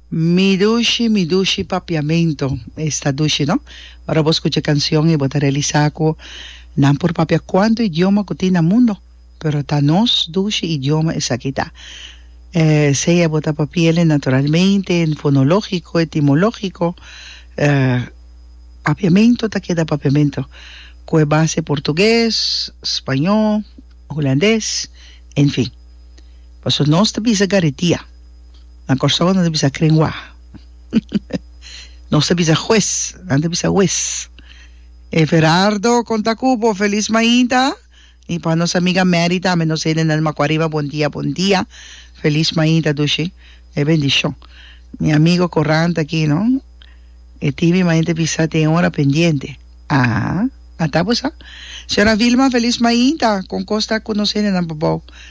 Mi dushi, mi dushi papiamento esta dushi no. Ora bo skucha e kanshon i bo ta realisá ku nan por papia kuantu idioma ku tin na mundu, pero ta nos dushi idioma esaki ta. Sea bo ta papiel e naturalmente, en fonológiko, etimológiko, papiamento ta keda papiamento ku e base portuges, spañó, hulandes, en fin. Paso nos ta bisa garitia. Na Kòrsou nan ta bisa kren wá. Nos ta bisa hues, nan ta bisa wes. Everardo kon ta ku bo? Felis mainta. I pa nos amiga Mary tambe, nos hende nan di Makuariba bon dia, bon dia. Felis mainta dushi. E bendishon. Mi amigo Corran ta aki, no? E tibi main ta bisa te e ora pendiente. Aha, a tabu sa. Señora Vilma, felis mainta. Kon kos ta ku nos hende nan pa bou?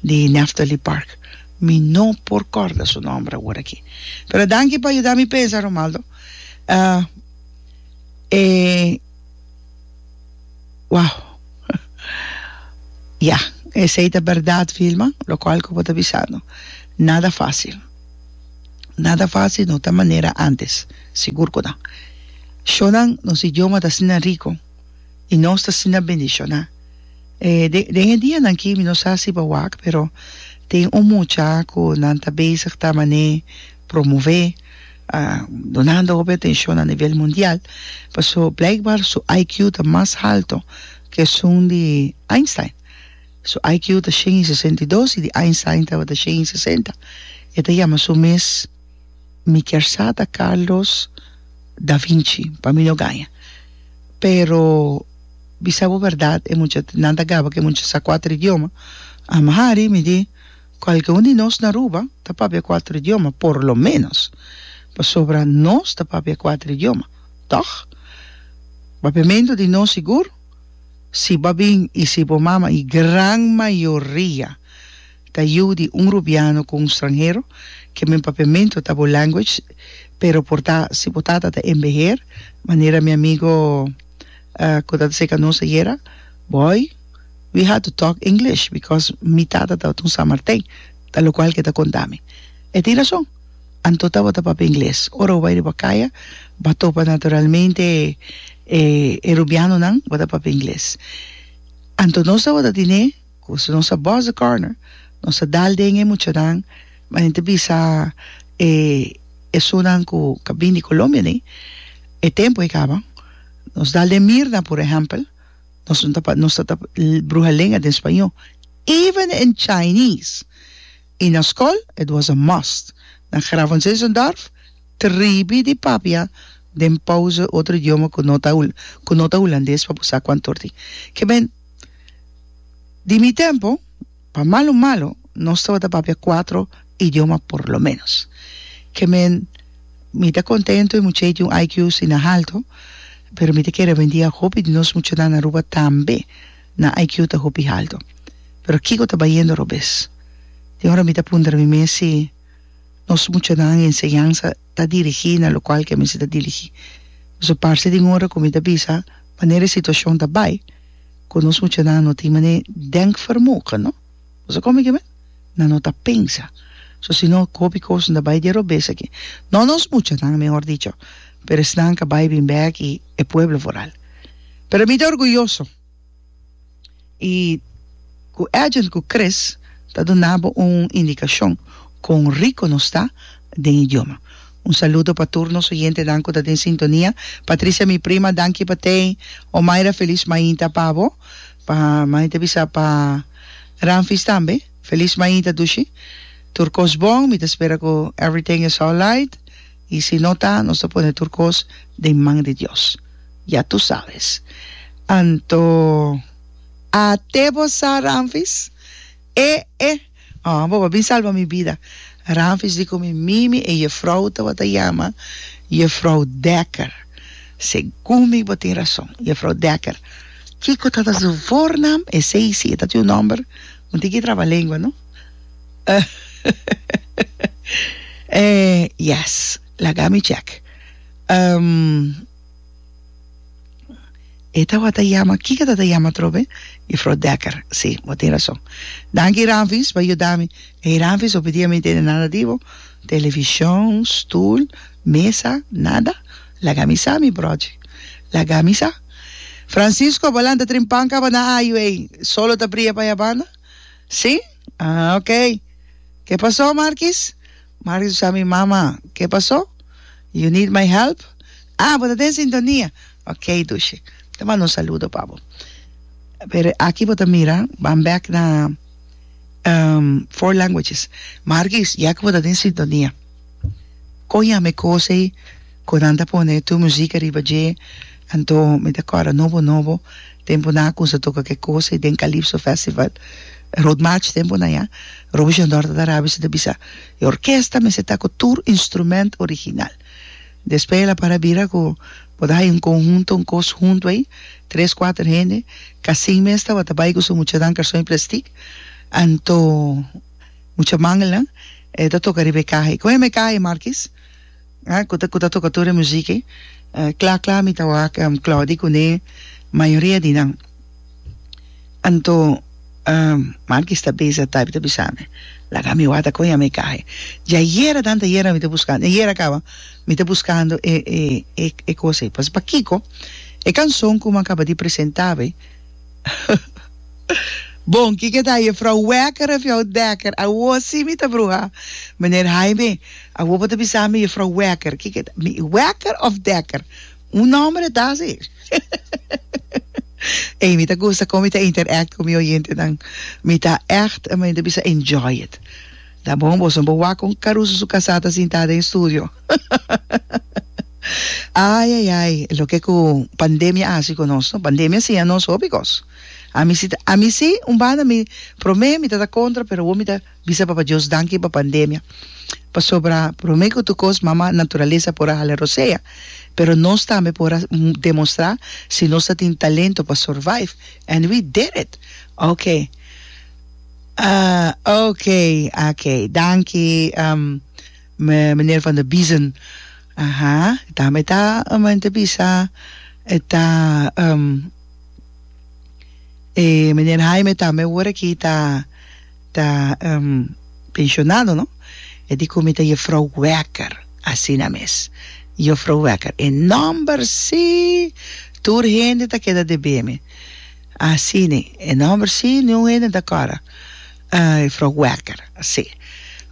di Nephtaly Park. Mi no por corda su nomber awor aki. Pero danki pa yuda mi pensa, Romaldo. E wow. Ya, esey ta berdad, Vilma, locual cu bo ta bisando. Nada facil. Nada facil no ta manera antes, sigur cu no. Shonan, nos idioma ta asina rico. i nos ta asina bendishoná. Den e dianan aki mi no sa si bo a wak pero tin un mucha ku nan ta bezig ta manera promové dunando hopi atenshon a nivel mundial paso blijkbaar su IQ ta mas halto ku esun di Einstein su IQ ta shen i sesenta i dos i di Einstein tabata shen i sesenta e ta yama su mes mi kier sa ta Carlos Da Vinci pa mi no gaña pero bisa bo berdad e mucha nan ta gaba ke mucha sa cuater idioma amahari mi di cualke un di nos na Aruba ta papia cuater idioma por lo menos pasobra nos ta papia cuater idioma tog papiamento di nos sigur si bo a bin y si bo mama y gran mayoria Ta yiu di un rubiano cu un stranhero que men papiamento ta bo language pero por ta si bo tata ta embeher manera mi amigo cu ta taseca nos ayera boy we had to talk English because mi tata tabata un San Martin ta locual que ta contami e tin razon anto tabata papia ingles ora bo bai riba caya ba topa naturalmente e rubianonan bo ta papia ingles anto nos tabata tine Cu si nos a bos e corner, nos a dal den e muchanan, ma nen ta bisa e esunnan cu ca bin di Colombia ni, e tempo a caba. Nos dal den Mirna, por ehempel, nos no ta, nos ta ta bruha lenga den Spaño, even in Chinese. Y na scol, it was a must. Na Gravenzeesendorf, tribi di papia den pauze otro idioma cu no ta, cu no ta Hulandes pa bo sa cu antor tin. Ke ben. Di mi tempo, pa malo malo, nos tabata papia cuatro idioma por lo menos. Ke men, mi ta contento e muchanan tin un IQ asina halto, pero mi ta kere hopidia e hopi di nos muchanan na Aruba tambe nan IQ ta hopi halto. Pero kiko ta bayendo robes? Tin ora mi ta puntra mi mes si nos muchanan enseñansa. ta dirigí na lokual ke mester ta dirigí. Pasobra parse den ora ku mi ta bisa manera e situashon ta bai ku nos muchanan no tin manera denkvermoge, no? Bo sa kome ke men? Nan no ta pensa. So si no ku hopi kos nan ta bai dia robes aki. No nos muchanan, mehor dicho, pero esnan ku a bai bin bèk i e pueblo foral. Pero mi ta orguyoso. i ku Agent ku Chris ta duna bo un indikashon kon riko nos ta den idioma. Un saludo pa tur nos oyentenan ku ta den sintonia. Patricia mi prima danki pa tei. Omaira felis mainta pa bo. Pa mami ta bisa pa Ramfis tambe felis mainta dushi. Tur kos bon mi ta spera ku everything is alright. y si no ta nos ta pone tur cos den man di Dios. Ya tu sabes. Anto a te bo sa Ramfis? E e oh bo a bin salba mi bida. Ramfis di cu mi mimi e jefrouw tabata jama jefrouw Dekker. Segun mi bo tin rason. Jefrouw Dekker. Kico tabata su voornaam? Esey si e tabata un nomber. Bo tin ki trabalengua no eh yes laga mi check um e tawata yama kiko tata yama atrobe jufrou Decker si bo tin rason danki Ranvis bo a yuda mi ey Ranvis hopi dia mi no tene nada di bo television stoel mesa nada laga mi sa mi brochi laga mi sa Francisco, bo lanta trin pan kabaná ayu ei, solo ta bria pa e abanda? Sí? Ah, ok. Ke pasó, Markis? Markis ku sa mi mama. Ke pasó? You need my help? Ah, bo ta den sintonia. Ok, Dushi. Ta manda un saludo pa bo. Pero aki bo ta mira, ban bèk na, ehm, four languages. Markis, ya ku bo ta den sintonia. Con yame cos ey cu nan ta pone tu musica riba dje anto mi ta acorda nobo nobo temponan cu sa toca ke cos ey den calipso festival rood march temponan ya robo jondor ta tarabi si ta bisa e orkesta mester ta cu tur instrument original despues el a para bira cu bo ta hayo un conhunto un cos hunto ey tres cuater hende casin mes tabata bay cu su muchanan carson y plastic anto Mucha mangela e ta toka riba e kaha e kon yama e kaha e Markis a ku ta ku ta toka tur e muzik e kla kla mi ta wak Clody kuné mayoria di nan anto Markis ta besa ta ta bisa mi laga mi wata kon yama e kaha e dja yera tanta yera mi ta buskando dja yera kaba mi ta buskando e e e e kos e pas pakiko e kanson ku mi a kaba di presentá be. Bon, kiko ta Jefrouw Wekker of jou Dekker? Awo si mi ta bruha. Meneer Haime, awo bo ta bisa mi Jefrouw Wekker. Kiko ta? Mi Wekker of Dekker? Un nomber et ta si. Ey, mi ta gusta kon mi ta interact ku mi oyentenan. Mi ta ègt, mi ta bisa enjoy it. Ta bon, boso bo wak kon Caruso su kasá ta sintá den estudio. Ai ai ai, loke ku pandemia a hasi ku nos no? Pandemia a siña nos hopi kos. Ami si ta, ami si, un banda mi promé mi ta ta kontra, pero awo mi ta bisa Papa Dios danki pa pandemia. Pasobra promé ku tur kos mama naturalesa por a hala rosea, pero nos tambe por a demostrá si nos ta tin talento pa survive. And we did it! Oke. Oke, oke. Danki. Meneer Van der Biezen, Aha, e tambe e ta men ta bisa e ta e meneer Haime tambe ora aki ta ta pensionado no, e di ku mi ta Jefrouw Wekker, asina mes, Juffer Wekker, e nòmber si, tur hende ta keda deb'e mi, asina e nòmber si, niun hende no ta kòrda. E fro Wekker, sí.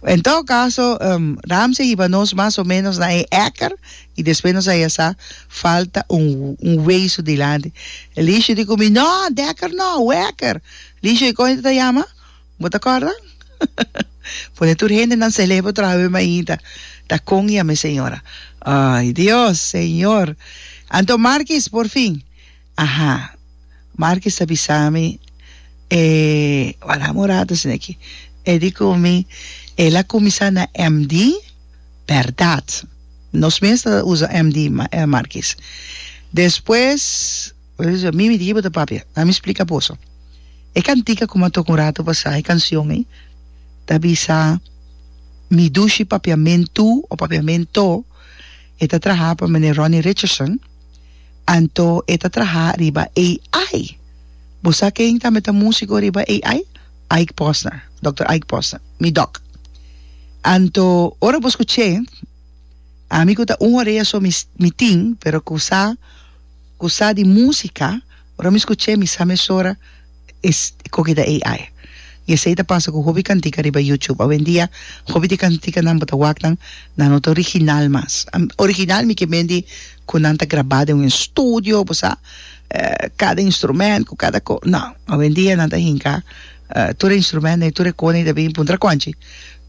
En todo caso, Ramsey hiba nos mas o menos na e ekker y despues nos a ya sa falta un wesu dilanti. Licio di cu mi, No, Dekker no, Wekker. Licio, y con e ta yama? Bo ta corda? Pone tur hendenan celebra traha web mainta. Ta con yam'e señora. Ay, Dios, Señor! Anto Markis, por fin. Aha. Marcus a bisa mi e Abraham ora ta haciendo aki. E di cu mi, El a cuminsa na MD, berdad. Nos mes ta usa MD, Marcus. Despues, mi mi di kico bo ta papia. Dame mi splica boso. E cantica cu mi a toca un rato pasa, e cancion ei, ta bisa, Mi dushi papiamentu, o papiamento, e ta traha pa Meneer Ronnie Richardson. Anto e ta traha riba AI. Bo sa ken tambe ta musiko riba AI? Ike Posner, Dòkter Ike Posner, mi dòk. Anto ora bo skuch'é, ami ku ta un orea so mi mi tin, pero ku sa ku sa di músika, ora mi skuch'é mi sa mesora es koki ta AI. I esei ta pasa ku hopi kantika riba YouTube. Awendia hopi di kantikanan bo ta wak nan, nan no ta original mas. Original mi ke mendi ku nan ta grabá den un estudio, bo sa, kada instrumènt ku kada ko. No, awendia nan ta hinka tur e instrumènt dei, tur e kosnan i ta bin puntra kònchi.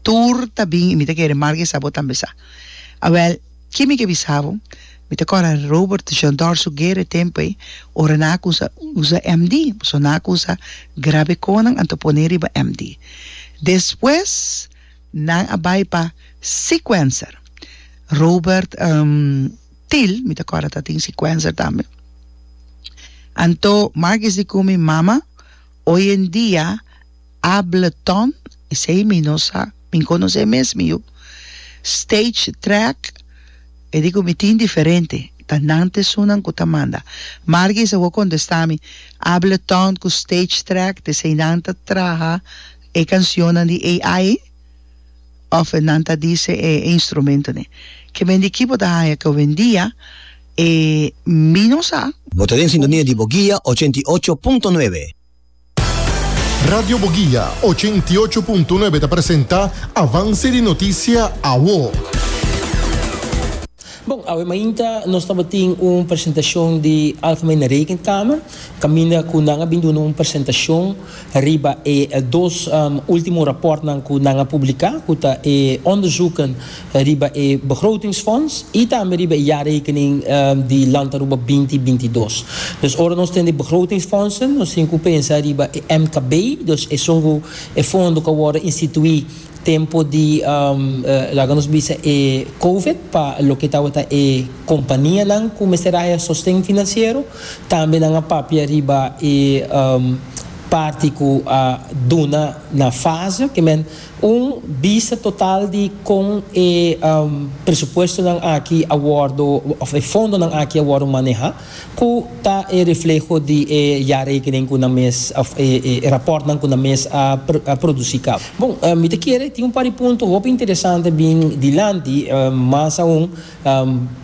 Tur ta bin, i mi ta kere marka esei abo tambe sa. Awèl. Ke mi ke bisa bo? Mi ta kòrda Robert Jean Dorso Guerra e tempu ei, ora nan a kusa usa MD, pasobra nan a kusa grabe konan anto pone riba MD. Despues nan a bai pa Sequencer, Robert Thiel mi ta kòrda ta tin Sequencer tambe. Anto Marcus Dicumi, Mama, hoy en dia, Ableton, esei mi no sa, mi conoce mes mi yu, Stage Track, e di cu mi tin diferente, ta nan ta esunnan cu ta manda. Margie is a wou contesta mi, Ableton cu Stage Track, ta esei nan ta traha e cancionnan di AI? Of e nan ta dice e instrumentonen? Ke men di kibo ta haya ke owendia? E mi no sa. Bo ta den sintonia di bo guia ochenta i ocho punto nuebe. Radio Boguia, ochenta i ocho punto nuebe ta presenta Avance di Noticia Awo. Bon, awe mainta nos tabatin un presentacion di Alpha Mena Rekenkamer, caminda cu nan a bin duna un presentacion riba e dos ultimo raportnan cu nan a publica, cu ta e onderzoeken riba e begrotingsfonds y tambe riba e jaarrekening di Land Aruba binti binti dos. Dus ora nos tin e begrotingsfondsen, nos tin cu pensa riba e MKB, dus esun cu e fondo cu a wordo institui tempo di, laga nos bisa e Covid, pa loke tabata e companianan cu mester haya sosten financiero, tambe nan a papia riba e parti cu a duna na fase, que men. Un bista total di kon e presupuestonan aki a wòrdu òf e fondonan aki a wòrdu manehá, ku ta e refleho di e jarekening ku nan mes òf e rapòrtnan ku nan mes a produsí kaba. Bon, mi ta kere tin un par di punto hopi interesante bin dilanti, mas aun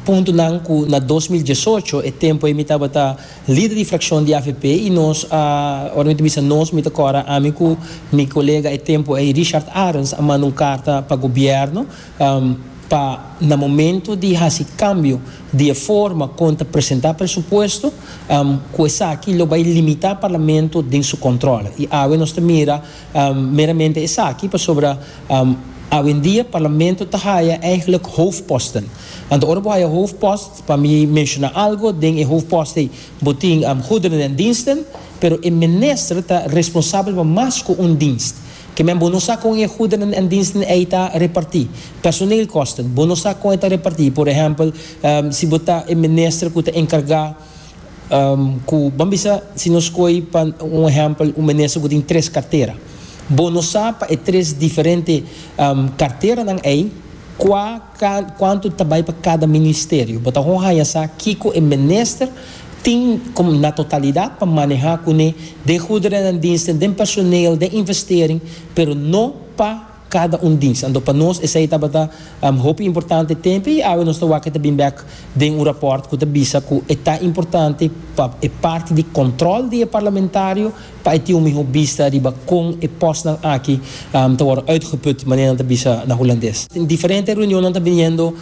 puntonan ku na dos mil diesocho, e tempu ei mi tabata Lider di frakshon di avp i nos a, ora mi ta bisa nos mi ta kòrda ami ku mi kolega e tempu ei Richard Arens a manda un karta pa gobièrnu pa na momentu di hasi kambio di e forma kon ta presentá presupuesto ku esaki lo bai limitá parlamento den su kòntròle i awe nos ta mira meramente esaki pasobra awendia parlamento ta haya eigenlijk hoofdposten anto ora bo haya hoofdpost Pa mi menshona algo den e hoofdpost ei, bo tin goederen den diensten, pero e minister ta responsabel pa mas ku un dienst. Kimen bo no sa kon e goederen en diensten ei ta repartí. Personeelkosten, bo no sa kon e ta repartí. Por ehèmpel, si bo ta e minister ku ta enkargá ku, ban bisa si nos koe pa un ehèmpel un minister ku tin tres kartera. Bo no sa pa e tres diferente karteranan ei kua. Cuanto ta bay pa cada ministerio? Bo ta con haya sa kico e minister tin como na totalidad pa maneha cune den goederennan diensten, den personeel, den investering, pero no pa cada un dienst. Anto pa nos esey tabata hopi importante tempe y awe nos ta wak e ta bin bek den un rapport cu ta bisa cu e ta importante pa e parti di control di e parlamentario, pa e tin un mihó bista riba kon e pòstnan aki ta wòrdu uitgeput, manera nan ta bisa na Hulandes. Diferente reunionnan ta biniendo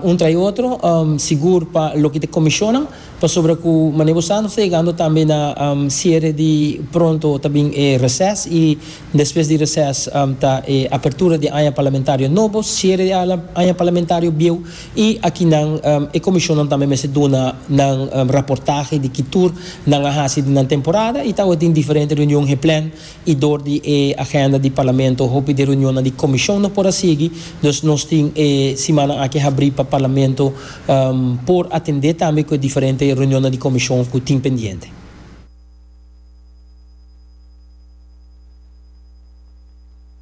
un trai otro, sigur pa loke ta e komishonnan, pasobra ku manera bo sa nos ta yegando tambe na siere di pronto ta bin e reses i despues di reses ta e apertura di e aña parlamentario nobo, siere di e aña parlamentario bieu. I aki nan e komishonnan tambe mester duna nan raportahe di ki tur nan a hasi den nan temporada i tawata tin diferente reunion geplan i dor di e agenda di Parlamento hopi di reunionnan di komishon no por a sigui. Dus nos tin e simannan aki habrí pa Parlamento por atendé tambe ku e diferente reunionnan di komishon ku tin pendiente.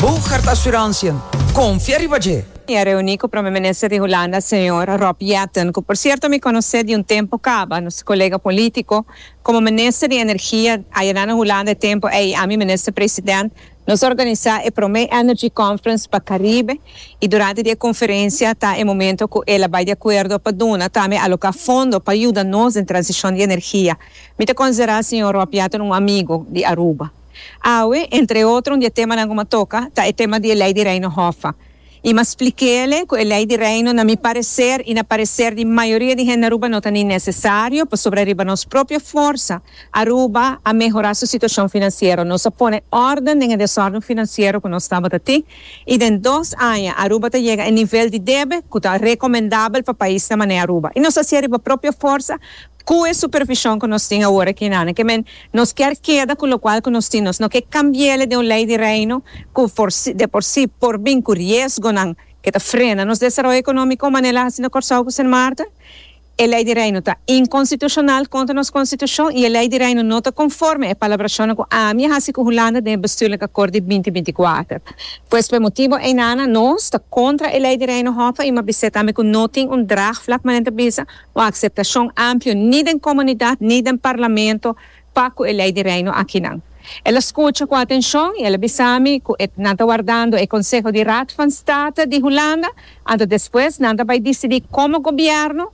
Bo carta assurantie, confia riba dje! Mi a reuni cu Prome Minister di Hulanda, Señor Rob Jetten, cu por cierto mi conoce di un tempo caba, nos colega politico. Como Minister di Energia, ayera na Hulanda e tempo ey, ami Minister President, nos a organiza e prome Energy Conference pa Caribe y durante di e conferencia ta e momento cu el a bay di acuerdo pa duna tambe aloca fondo pa yuda nos den transicion di energia. Mi ta considera Señor Rob Jetten un amigo di Aruba. Awe, entre otro un di e temanan ku mi a toka ta e tema di e Lei di Reino Hòf. I mi a splik'é ku e Lei di Reino na mi pareser i na pareser di mayoria di hende Aruba no ta ni nesesario pasobra riba nos propio forsa Aruba a mehorá su situashon finansiero. Nos a pone òrden den e desòrden finansiero ku nos tabata tin i den dos aña Aruba ta yega e nivel di debe ku ta rekomendabel pa paisnan mané Aruba. I nos a hasié riba propio forsa. Cu e supervision cu nos tin awor aki na Aneke men, nos kier keda cu locual cu nos tin, nos no ke cambiele den un ley di Reino cu de por si por bin cu riesgonan ke ta frena nos desaroyo economico manera el a haci na Corsou cu Sint Maarten. E ley di Reino ta inconstitucional contra nos Constitucion y e ley di Reino no ta conforme e palabracionnan cu ami a haci cu Hulanda den e bestuurlijk akkoord di binti binti kuater. Pues p'e motibo ei na nos ta contra e ley di Reino Hoffe y m'a bisé tambe cu no tin un draagvlak manera ta bisa Un aceptacion amplio ni den comunidad ni den Parlamento pa cu e Ley di Reino akinan. El a scucha cu atencion y el a bisa mi cu e nan ta wardando e conseho di Raad van State di Hulanda anto despues nan ta bay dicidi como gobierno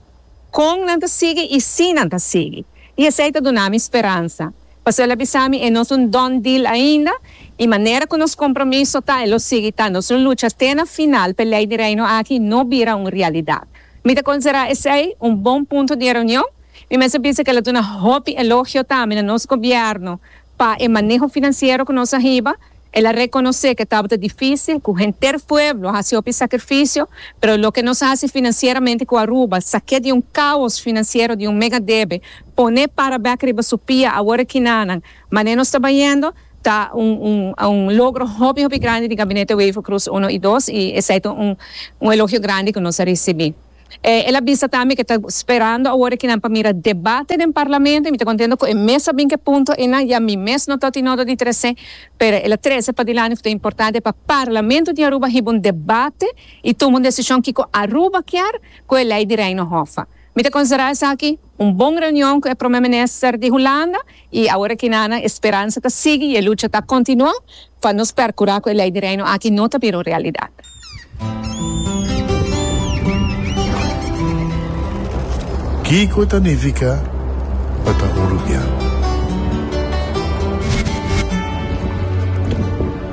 con nan ta sigui y si nan ta sigui. Y esey ta duna mi speransa. Pasobra el a bisa mi e no es un done deal ainda y manera cu nos compromiso ta e lo sigui ta nos lo lucha te na final p'e Ley di Reino aki no bira un realidad. Mi ta considera esey un bon punto di e reunion. Mi mester bisa cu el a duna hopi elogio tambe na nos gobierno pa e maneho financiero cu nos a hiba. El a reconoce cu tabata dificil, cu henter pueblo a haci hopi sacrificio, pero loke nos a haci financieramente cu Aruba, saque di un caos financiero di un mega debe, pone para bek riba su pia awor e kinanan, mane nos ta bayendo, Ta un logro hopi hopi grandi di Gabinete Wever Croes Uno y Dos y esey ta un elogio grandi cu nos a ricibi. El a bisa tambe cu ta sperando awor aki nan pa mira debate den Parlamento y mi ta contento cu e mes a bin cu e punto eynan, ya mi mes no ta ota y no ta di trece pero el a trece padilanti cu ta importante pa Parlamento di Aruba hiba un debate y tuma un decision kico Aruba kier cu e Ley di Reino Hoffa. Mi ta considera esaki un bon reunion cu e Prome Minister di Hulanda I awor aki Nana e speransa ta sigui i e lucha ta continua pa nos percura cu e Ley di Reino aki no ta bira un realidad. Kico ta nifica pa ta un rubian?